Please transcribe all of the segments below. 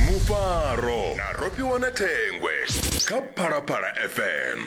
mufaro na rofhiwa na thengwe kha phalaphala fm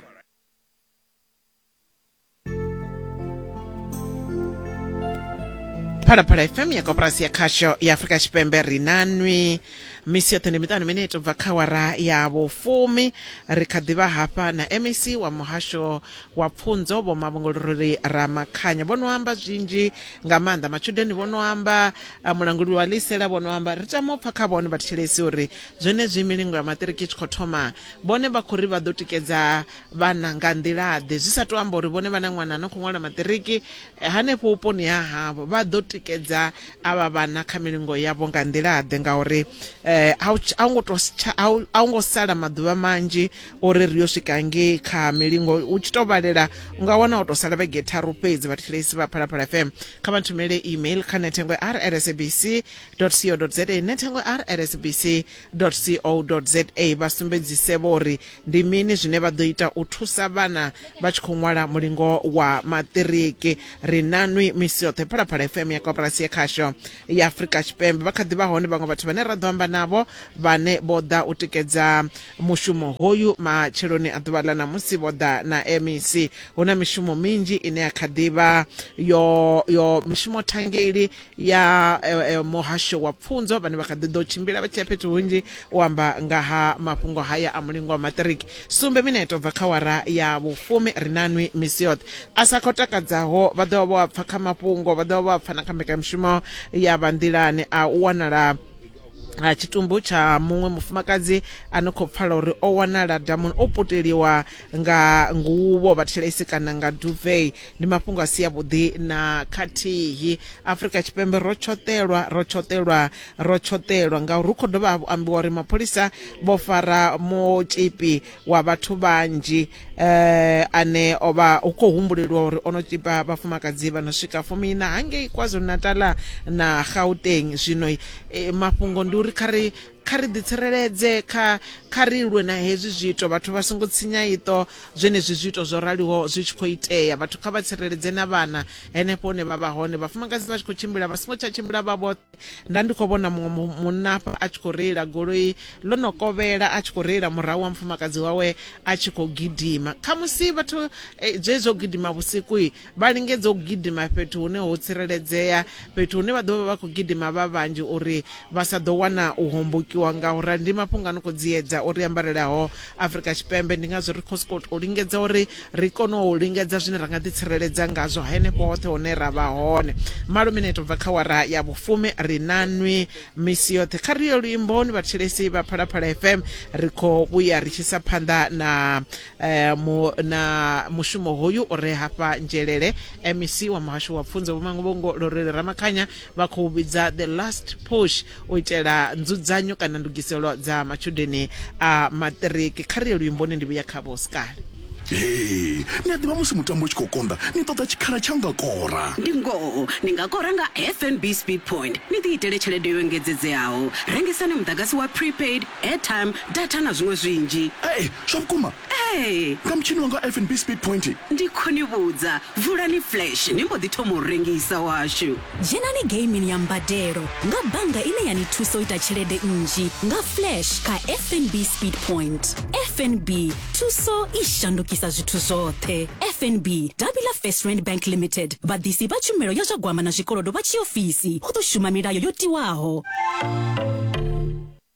phalaphala fm ya koporasi ya khasho ya afurika tshipembe ri na nwi misi yoṱhe ndi miṱanu mine itobva kha wara ya vhufumi ri kha ḓivha hafha na mec wa muhasho wa pfunzo vho mavhongolorori ramakhanya vho no amba zwinzhi nga maanḓa matshudeni vho no amba a mulanguli wa lisela vhono amba ri tama u pfa kha vhone vhathetshelesi uri zwenezwi milingo ya maṱiriki i tshi khou thoma vhone vha khou ri vha ḓo tikedza vhana nga nḓilaḓe zwi sa tou amba uri vhone vhana ṅwana no khou ṅwala maṱiriki eh, hanefho vhuponi ha havho vha ḓo tikedza avha vhana kha milingo yavho nga nḓilaḓe ngauri eh, a u ngo to a u ngo sala maḓuvha manzhi uri ri yo swika ngei kha milingo u tshi to vhalela u nga wana u to sala vhege tharu fhedzi vhathetshelesi vha phalaphala fm kha vha nthumele email kha nethengwe r at sabc co za nethengwe r at sabc co za vha sumbedzise vho uri ndi mini zwine vha ḓo ita u thusa vhana vha tshi khou ṅwala mulingo wa maṱiriki ri na nwi misi yoṱhe phalaphala fm ya koporasi ya khasho ya afurika tshipembe vha kha ḓi vha hone vhaṅwe vhathu vhane ra ḓo amba navho vhane vho ḓa u tikedza Mushumo hoyu matsheloni a ḓuvha ḽa ṋamusi vho ḓa na MEC. Hu na mishumo minzhi ine ya kha ḓi vha yo yo mishumo thangeli ya eh, eh, muhasho wa pfunzo vhane vha kha ḓi ḓo tshimbila vha tshi ya fhethu hunzhi u amba nga ha mafhungo haya a mulingwa wa maṱiriki sumbe mineto bva kha wara ya vhufumi ri na nwi misi yoṱhe a sa khou takadzaho vha ḓo vha vho a pfa kha mafhungo vha ḓo vha vho a pfa na kha mbekanyamushumo ya vha nḓilani a u wanala ha tshitumbu tsha muṅwe mufumakadzi a no khou pfala uri o wanala damuni o puteliwa nga nguvho vhathelaisi kana nga duvei ndi mafhungo a si avhuḓi na khathihi afrika tshipembe ro tshoṱelwa ro tshoṱelwa ro tshoṱelwa ngauri hu khou dovha hafhu ambiwa uri mapholisa vho fara motipi wa vhathu vhanzhi eh, ane o vha hu khou humbulelwa uri o no tsipa vhafumakadzi vha no swika fumiina hangei kwazulu-natala na gauteng zwino eh, mafhungo ndi uri kha ri kha ri ḓitsireledze kha kha ri lwe na hezwi zwiito vhathu vha songo tsinya iṱo zwenezwi zwiito zwo raliho zwi tshi khou itea vhathu kha vha tsireledze na vhana henefho hune vha vha hone vhafumakadzi vha tshi khou tshimbila vha songo tsha tshimbila vha vhoṱhe nda ndi khou vhona muṅwe mu- munna hafha a tshi khou reila goloi ḽo no kovhela a tshi khou reila murahu wa mufumakadzi wawe a tshi khou gidima khamusi vhathu eh, zwezwi zwo gidima vhusiku i, vha lingedza u gidima fhethu hune ho tsireledzea fhethu hune vha ḓo vha vha khou gidima vha vhanzhi uri vha sa ḓo wana u hombokiwa nga u rali ndi mafhungo a no khou dziedza uri ambarelaho afrika tshipembe ndi ngazwo ri khou sokou tou lingedza uri Ri kona u lingedza zwine ra nga ḓitsireledza ngazwo henefho hoṱhe hune ra vha hone. Malo mineto u bva kha awara ya vhufumi, ri na nwi misi yoṱhe. Kha ri ye luimboni, vhathetshelesi vha Phalaphala FM. Ri khou vhuya ri tshi isa phanḓa na na mushumo hoyu u re hafha Nzhelele. MEC wa Muhasho wa Pfunzo Vho Manguvhongo Lorelly Ramakhanya. vha khou vhidza the last push u itela nzudzanyo kana ndugiselo dza matshudeni a maṱiriki kha ri ye luimboni ndi vhuya kha vhoskali Hee, ni a ḓivha musi mutambo u tshi khou konḓa ni ṱoḓa tshikhala tsha u nga kora. Ndi ngoho, ni nga kora nga FNB Speed Point ni ḓiitele tshelede yo engedzedzeaho. Rengisani muḓagasi wa prepaid, airtime, data na zwiṅwe zwinzhi. Hee, zwa vhukuma? Ee. Nga mutshini wanga wa FNB Speed Point. Ndi khou ni vhudza, vulani Flash ni mbo ḓi thoma u rengisa washu. Dzhenani geimini ya mbadelo nga bannga ine ya ni thusa u ita tshelede nnzhi nga Flash kha FNB Speed Point. FNB, thuso i shandukisa zwithu zwoṱhe. FNB, davhi ḽa First Rand Bank Limited, vhaḓisi vha tshumelo ya zwa gwama na zwikolodo vha tshiofisi, hu ḓo shuma milayo yo tiwaho.